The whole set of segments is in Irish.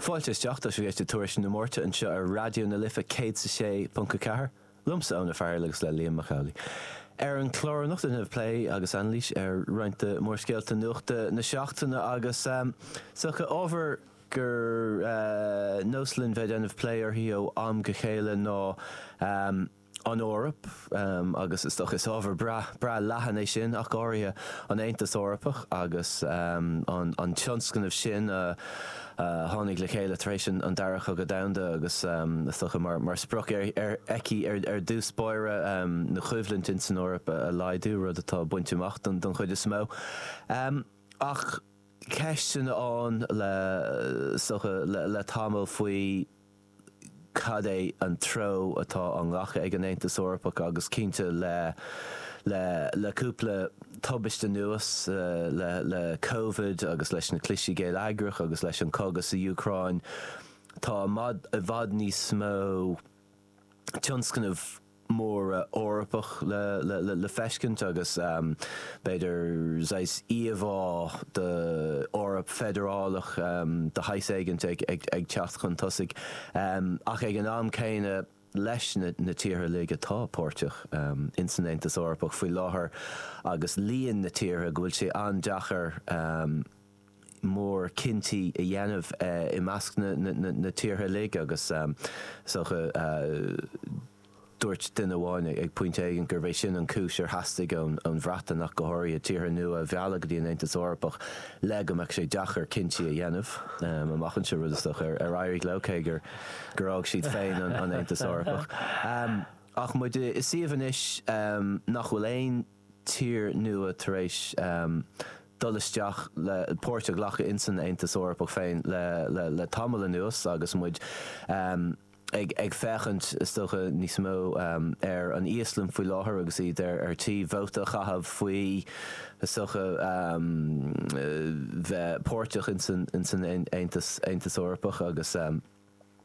Fáilte isteach, tá sibh ag éisteacht le Tuairisc na Máirte anseo ar Raidió na Life 106.4, liomsa Eoin Ó Fearghaíl agus le Liam Mac Amhlaigh. Ar an chlár anocht déanfam plé agus anailís ar roinnt de mhórscéalta nuachta na seachtaine agus is dócha ábhar gur nós linn bheith ag déanamh plé uirthi ó am go chéile ná an Eoraip agus is dócha is ábhar breá breá leathan é sin ach go háirithe an Aontas Eorpach agus an tionscnamh sin a tháinig le chéile tar éis an Dara Cogadh Domhanda agus is dócha mar sprioc aici ar dtús báire na choimhlint ins an Eoraip a laghdú, rud atá bainte amach don chuid is mó. Ach ceisteanna ann le is dócha le tamall faoi. cad é an treo atá á ghlacadh ag an Aontas Eorpach agus cinnte le le cúpla tubaiste anuas, le le Covid agus leis na clistí geilleagracha agus leis an cogadh sa Úcráin, tá i bhfad níos mó tionscnamh. móra Eorpach le feiscint agus b'fhéidir saghas íomhá d'Eoraip feidearálach de shaghas éigint ag teacht chun tosaigh ach ag an am céanna leis na tíortha uilig atá páirteach in san Aontas Eorpach faoi láthair agus líon na tíortha go bhfuil sé an-deachair mór cinntí a dhéanamh i measc na tíortha uilig agus is dócha dúirt duine amháin ag pointe éigin gurbh é sin an chúis ar theastaigh ón Bhreatain ach go háirithe, tíortha nua a mhealladh go dtí an Aontas Eorpach le go mbeadh sé deacair cinntí a dhéanamh amach anseo, rud is dócha ar éirigh leo, cé gur fhág siad féin an Aontas Eorpach. Ach muid i suíomh anois nach bhfuil aon. tír nua tar éis dul isteach le páirt a ghlacadh in san Aontas Eorpach féin le tamall anuas agus muid ag féachaint is dócha níos mó ar an Íoslainn faoi láthair agus iad ar tí vóta a chaitheamh faoi is dócha bheith páirteach in san Aontas Aontas Eorpach agus.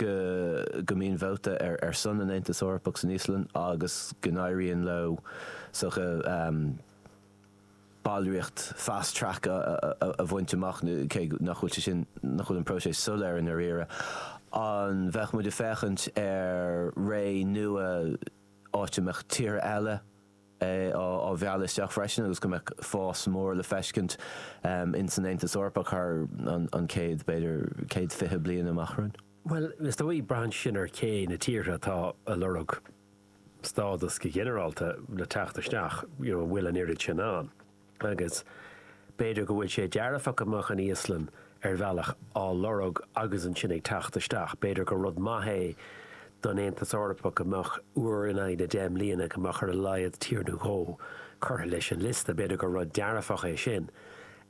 go go mbíonn vóta ar ar son an Aontas Eorpach san Íoslainn agus go n-éiríonn leo is dócha ballraíocht fast track a bhaint amach, cé nach bhfuil sé sin, nach bhfuil an próiseas soiléir i ndáiríre. An mbeidh muid ag féachaint ar ré nua áit a mbeadh tíortha eile, á mealladh isteach freisin agus go mbeadh fás mór le feiscint in san Aontas Eorpach thar an chéad, b'fhéidir céad fiche bliain amach romhainn. Bhuel, is dóigh, braitheann sin ar cé na tíortha atá a' lorg stádas go ginearálta le teacht isteach, an bhfuil an oiread sin ann. agus b'fhéidir go bhfuil sé dearfach go mbeadh an Íoslainn ar bhealach á lorg agus ansin ag teacht isteach. B'fhéidir gur rud maith é don Aontas Eorpach go mbeadh, uair in aghaidh na deich mbliana, go mbeadh ar a laghad tír nó dhó curtha leis an liosta. B'fhéidir gur rud dearfach é sin,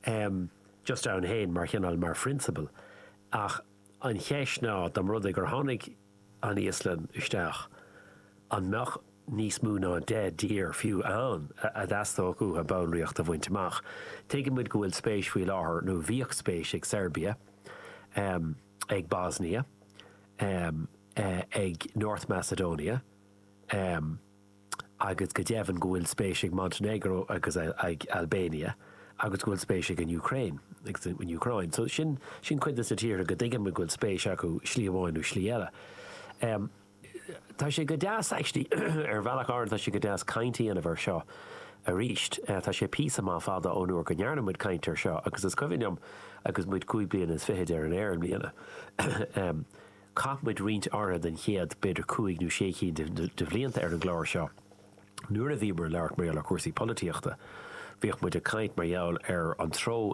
um just ann féin mar chineál, mar phrionsabal, ach an cheist ná, dá mba rud é gur tháinig, an Íoslainn isteach, an mbeadh níos mó ná deich dtír fiú ann a dteastódh uathu ballraíocht a bhaint amach? Tuigeann muid go bhfuil spéis faoi láthair, nó bhíodh spéis ag Seirbia, ag Bosnia, ag North Macedonia, agus go deimhin go bhfuil spéis ag Montainéagró agus ag Albania agus go bhfuil spéis ag an Úcráin agus an Úcráin. So sin cuid de na tíortha go dtuigim go bhfuil spéis acu slí amháin nó slí eile. Em tá sé go deas actually ar bhealach áirithe tá sé go deas caint a dhéanamh air seo arís. Tá sé píosa maith fada ón uair go ndearna muid caint air seo agus is cuimhin liom agus muid cúig bliana is fichid ar an aer i mbliana em Chaith muid roinnt áirithe den chéad, b'fhéidir cúig nó sé cinn de bhlianta ar an gclár seo nuair a bhíomar ag labhairt mar gheall ar chúrsaí polaitíochta. Bhíodh muid ag caint mar gheall ar an treo